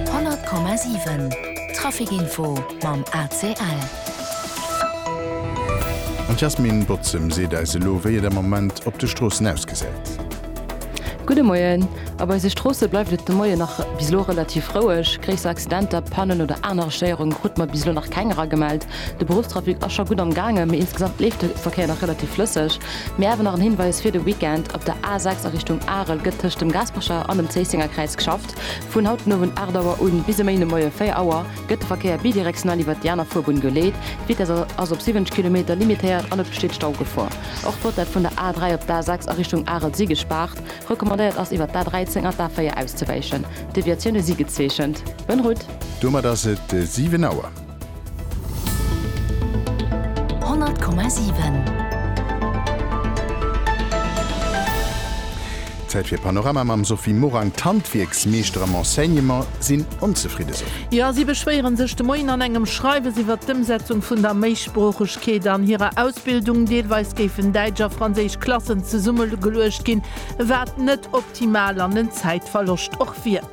100,7 Traficinfo mam ACL. An d'Yasmine Bozem seet eis elo, wéi et am Moment op de Stroossen ausgesäit. Gudde Moien. Op eise Stroosse bleift et de Moien nach bis elo relativ roueg. Gréisser Accidenter, Pannen oder aner Stéierunge krute mer bis elo nach keng eragemellt. De Beruffstrafic ass scho gutt am gaange, mee insgesamt leeft de Verkéier nach relativ flësseg. Mir hawen nach en Hinweis fir de Weekend, Op der A6 a Richtung Arel gëtt tëscht dem Gaspercher an dem Zéissenger Kräiz geschafft. Vun haut den Owend 8 Auer u bis e Méi de Moie 4 Auer gëtt de Verkéier bidirektional iwwert déi aner Fuerbunn geleet. D'Vitess ass op 70 Kilometer limitéiert an et besteet Staugefor. Och d'Bottett vun der A3 op d'A6 a Richtung Arel si gespaart. Recommandéiert ass iwwert d'A13 an d'A4 auszewäichen. Deviatioune si gezeechent. Bonne route! Domat ass et 7 Auer. Zäit fir Panorama mam Sophie Morang, D'Handwierksmeeschter am Enseignement sinn onzefridde, Sophie. Jo, si beschwéiere sech de Moien an engem Schreiwes iwwert d'Ëmsetzung vun der Méisproochegkeet an hirer Ausbildung. Deelweis géifen däitsch a franséisch Klassen zesummegeluecht ginn, wat net optimal an en Zäitverloscht och wier.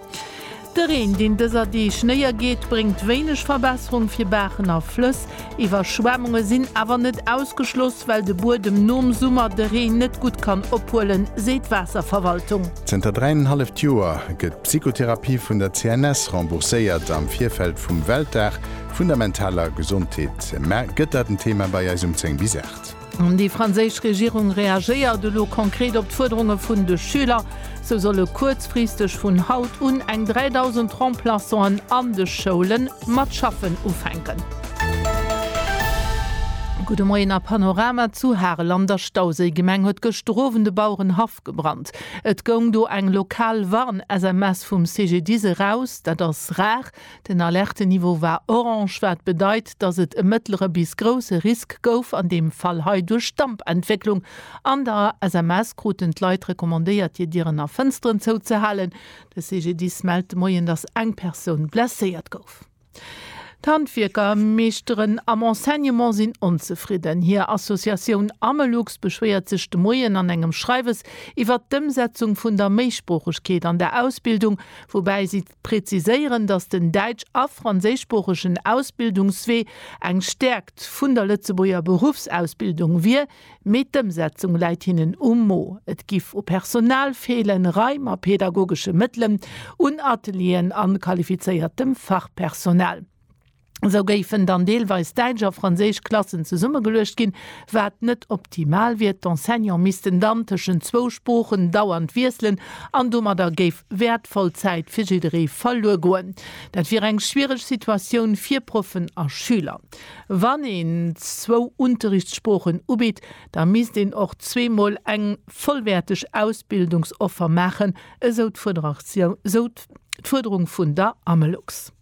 De Reen, deen dëser Deeg néiergeet, bréngt wéineg Verbesserung fir Baachen a Flëss. Iwwerschwemmunge sinn awer net ausgeschloss, well de Buedem nom Summer de Reen net gutt kann ophuelen, seet d'Waasserverwaltung. Zënter dräinenhalleft Joer gëtt d'Psychotherapie vun der CNS rembourséiert. Am Virfeld vum Weltdag vun der mentaler Gesondheet gëtt dat en Thema bei eis um 10 bis 8. Déi franséisch Regierung reagéiert elo konkret op d'Fuerderunge vun de Schüler. Sou solle kuerzfristeg vun haut un eng 3.000 Remplaçanten an de Schoule mat schaffen ufänken. Gudde Moien a Panorama zu Harel an der Stauséigemeng huet gëschter Owend e Bauerenhaff gebrannt. Et goung do eng lokal Warn-SMS vum CGDIS eraus. Dat ass rar. Den Alertenniveau war orange, wat bedeit, dass et e mëttlere bis grousse Risk gouf, an deem Fall hei duerch Dampentwécklung. An der SMS kruten d'Leit recommandéiert, hir Dieren a Fënsteren zouzehalen. De CGDIS mellt de Moien, dass eng Persoun blesséiert gouf. D'Handwierker, Meeschteren am Enseignement sinn onzefridden. Hir Associatioun Amelux beschwéiert sech de Moien an engem Schreiwes iwwert d'Ëmsetzung vun der Méisproochegkeet an der Ausbildung, woubäi si Präziséieren, dass den däitsch a franséischsproochegen Ausbildungswee eng Stäerkt vun der Lëtzebuerger Beruffsausbildung wier, mee d'Ëmsetzung läit hinnen um Mo. Et giff u Personal feelen, Raim a pedagogesche Mëttelen, un Atelieren an qualifizéiertem Fachpersonal. Esou géifen dann deelweis däitsch a franséisch Klassen zesummegeluecht ginn, wat net optimal wier. D'Enseignante missten dann tëschent zwou Sproochen dauernd wiesselen an domadder géif wäertvoll Zäit fir jidderee verluer goen. Dat wier eng schwiereg Situatioun fir Proffen a Schüler. Wann een zwou Unterrichtssproochen ubitt, da misst een och zweemol eng vollwäerteg Ausbildungsoffer maachen, esou d'Fuerderung vun der Amelux.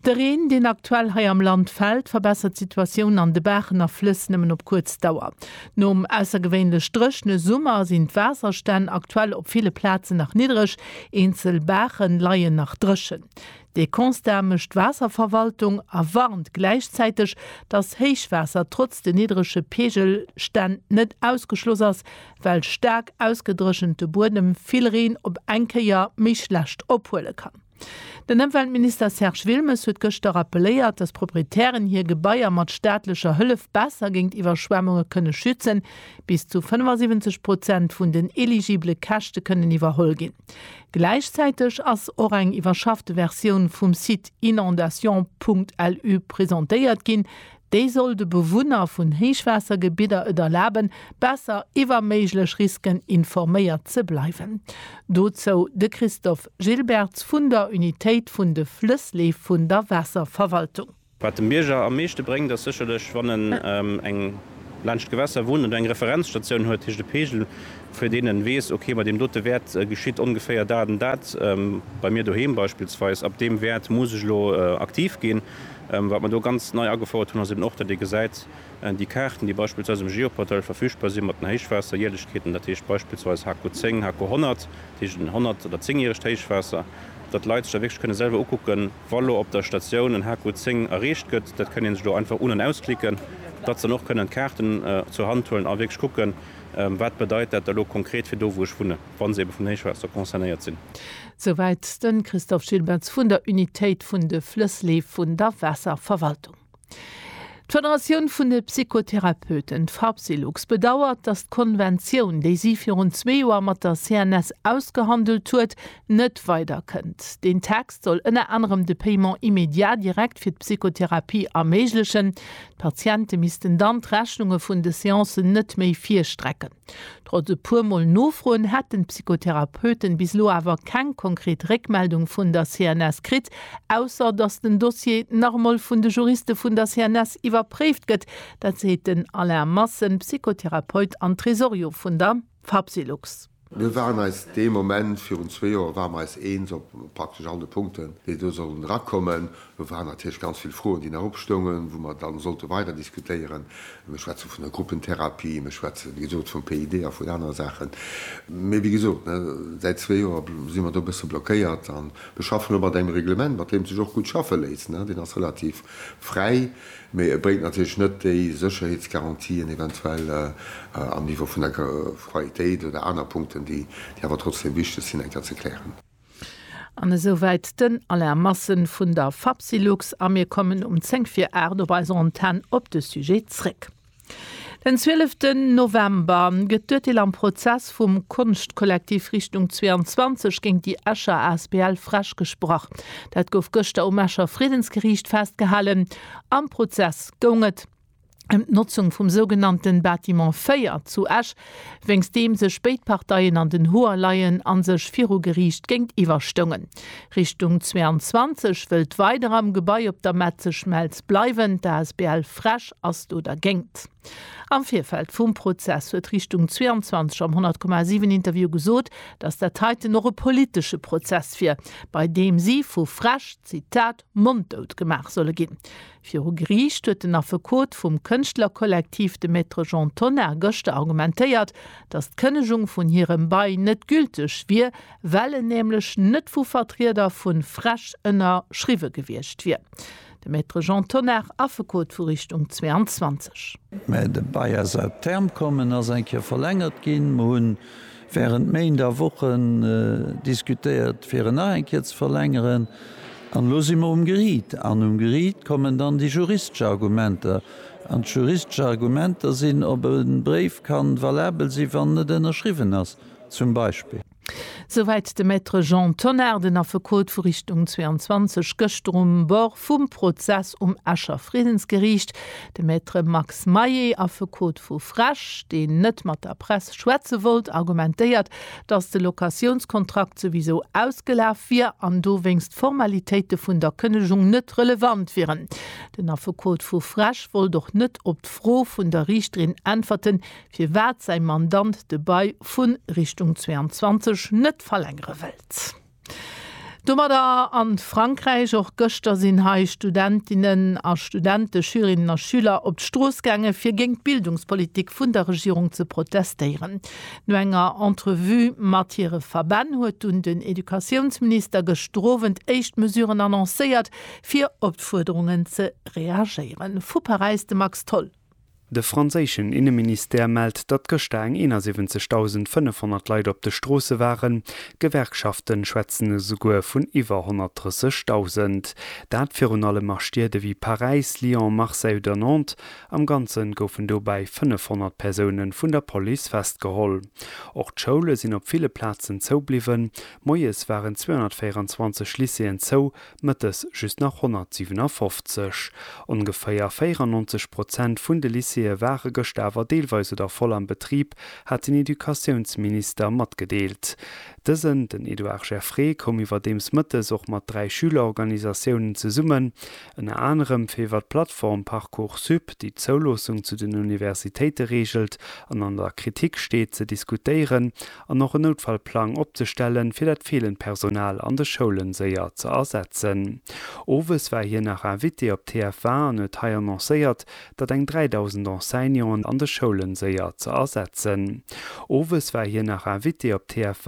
De Reen, deen aktuell hei am Land fält, verbessert d'Situatioun an de Baachen a Flëss nëmmen op kuerz Dauer. Nom aussergewéinlech dréchne Summer sinn d'Waasserstänn aktuell op ville Plazen nach niddreg, eenzel Baache leien nach dréchen. Dee Constat mécht d'Waasserverwaltung a warnt gläichzäiteg, dass Héichwaasser trotz de niddrege Peegelstänn net ausgeschloss ass, well staark ausgedréchente Buedem vill Reen op eng Kéier méi schlecht ophuele kann. Den Ëmweltminister Serge Wilmes huet gëschter rappeléiert, datt d'Proprietären hir Gebaier mat staatlecher Hëllef besser géint Iwwerschwemmunge kënne schützen. Bis zu 75 Prozent vun den eligibele Käschte kënnen iwwerholl ginn. Gläichzäiteg ass och eng iwwerschaffte Versioun vum Site inondations.lu presentéiert ginn, Déi soll de Bewunner vun Héichwaassergebidder et erlaben, besser iwwer méiglech Risken informéiert ze bleiwen. Dozou de Christophe Gilbertz vun der Unitéit vun de Flëssleef vun der Waasserverwaltung. Wat dem Bierger am meeschte bréngt, ass sécherlech, wann en eng laanscht d'Gewässer wunnt oder eng Referenzstatioun huet, heescht e Peegel, fir deen en weess, ok, bei deem dote Wäert geschitt ongeféier dat an dat, bei mir doheem beispillsweis, ab deem Wäert muss ech elo aktiv ginn. Wat mer do ganz nei agefouert hunn, ass eben och, datt ee gesäit, déi Kaarten, déi beispillsweis um Geoportail verfügbar sinn, mat den Héichwaasserjärlechkeeten, dat heescht beispillsweis HK 10, HK 100, dat heescht en honnert oder zéngjäregt Héichwaasser, datt d'Leit sech da wierklech kënne selwer ukucken, wa lo op der Statioun en HK 10 erreecht gëtt, dat kënne sech do einfach un an ausklicken, datt se dann och kënnen d'Kaarten zur Hand huelen a wierklech kucken, wat bedeit dat da lo konkret fir do, wou ech wunnen, wa se ebe vum Héichwaasser concernéiert sinn. Souwäit de Christophe Gilbertz vun der Unitéit vun de Flëssleef vun der Waasserverwaltung. D'Federatioun vun de Psychotherapeuten, d'Fapsylux, bedauert, datt d'Konventioun, déi si virun zwee Joer mat der CNS ausgehandelt huet, net weider kënnt. Deen Text soll ënner anerem de Paiement immédiat direct fir d'Psychotherapie erméiglechen. D'Patiente missten dann d'Rechnunge vun de Seancen net méi virstrecke. Trotz e puer Mol nofroen, hätten d'Psychotherapeuten bis elo awer keng konkret Réckmeldung vun der CNS kritt, ausser datt den Dossier nach emol vun de Juriste vun der CNS iwwerpréift gëtt. Dat seet den Alain Massen, Psychotherapeut an Tresorio vun der Fapsylux. Mir waren eis dee Moment, virun zwee Joer ware mer eis eens op praktesch all de Punkten, déi do sollen erakommen. Do waren natierlech ganz vill Froen, déi nach opstoungen, wou mer dann sollte weider diskutéieren. Mir schwätze vun der Gruppentherapie, mir schwätzen, wéi gesot, vum PID a vun anere Saachen. Mee wéi gesot, säit zwee Joer si mer do e bësse blockéiert. An mir schaffen elo mat engem Reglement, mat deem et sech och gutt schaffe léisst. Deen ass relativ fräi, mee e bréngt natierlech net déi Sécherheetsgarantien eventuell am Niveau vun der Qualitéit oder aner Punkten, déi awer trotzdeem wichteg sinn, eng Kéier ze klären. An esouwäit den Alain Massen vun der Fapsylux a mir kommen um 10 vir 8 op eiser Antenn op de Sujet zréck. Den 12 ten November gëtt d'Urteel am Prozess vum Konschtkollektiv Richtung 22 géint déi Escher asbl Fresch gesprach. Dat gouf gëschter um Escher Friedensgeriicht festgehalen. Am Prozess goung et. ëm d'Notzung vum sougenannten Bâtiment 4 zu Esch, wéinst deem sech béid Parteien an den Hoer leien a sech viru Geriicht géintiwwer stoungen. Richtung 22 wëllt weider am Gebai op der Metzeschmelz bleiwen, d'Asbl Fresch ass do dergéingt. Am Virfeld vum Prozess huet Richtung 22 am 100,7 Interview gesot, datt dat heiten och e politesche Prozess wier, bei deem si vu Fresch, Zitat, monddout gemaach solle ginn. Viru Geriicht huet den Affekot vum Kënschtlerkollektiv, de Maître Jean Tonnar, gëschter argumentéiert, datt d'Kënnegung vun hirem Bail net gülteg wier, well en nämlech net vu Vertrieder vu frEsch ënnerschriwwe gewiescht wier. De Maître Jean Tonnar, Affekot vu Richtung 22. Mä de Bail ass à terme komm, en ass eng Kéier verlängert ginn. Mer hunn Während Méint a Wochen diskutéiert fir en nach eng Kéier ze verlängeren an elo si mer um Geriit. An um Geriit kommen dann déi juristesch Argumenter. An d'juristesch Argumenter sinn, ob e Bréif ka valabel sinn, wann en net ënnerschriwwen ass zum Beispill. Souwäit de Maître Jean Tonnar, den Affekot vu Richtung 22, gëschter um Bord vum Prozess um Escher Friddensgeriicht. De Maître Max Maé, Affekot vu Frech, deen net mat der Press schwätze wollt, argumentéiert, datt de Locatiounskontrakt souwisou ausgelaf wier an dowéinst d'Formalitéite vun der Kënnegung net relevant wieren. Den Affekot vu Frech wollt och net op d'Fro vun der Riichterin äntwerten, firwat säi Mandant de Bail vu Richtung 22 net verlängere wëllt. Domadder an Frankräich. Och gëschter sinn hei Studentinnen a Studente, Schülerinnen a Schüler op d'Strooss gaange fir géint d'Bildungspolitik vun der Regierung ze protestéieren. No enger Entrevue mat hire Verbänn huet dunn den Educatiounsminister gëschter Owend éischt Mesuren annoncéiert fir op d'Fuerderungen ze reagéieren. Vu Paräis de Max Tholl. De franséischen Inneministère mellt, datt gëschter eng 71.500 Leit op de Stroosse waren. D'Gewerkschafte schwätzen esouguer vun iwwer 130.000. Dat virun allem a Stied ewéi Paräis, Lyon, Marseille oder Nantes. Am Ganze goufen dobäi 500 Persoune vun der Police festgeholl. Och d'Schoule sinn op ville Plazen zoubliwwen. Moies waren 224 Lycéeën zou, Mëttes just nach 157. Ongeféier 94 Prozent vun de Lycéeë ware gëschter awer deelweis oder voll am Betrib, hat den Educatiounsminister matgedeelt. Dësen, den Edouard Geffray, koum iwwerdeems mëttes och mat dräi Schülerorganisatiounen zesummen, ënner anerem fir iwwer d'Plattform Parcoursup, déi d'Zouloossung zu den Universitéite reegelt an an der Kritik steet, ze diskutéieren an och en Noutfallplang opzestellen, fir dat feelend Personal an de Schoulen séier ze ersetzen. Owes war hien nach Invité op TF1 an huet hei annoncéiert, datt eng 3.000 Enseignanten an de Schoulen séier ze ersetzen. Owes war hien nach Invité op TF1.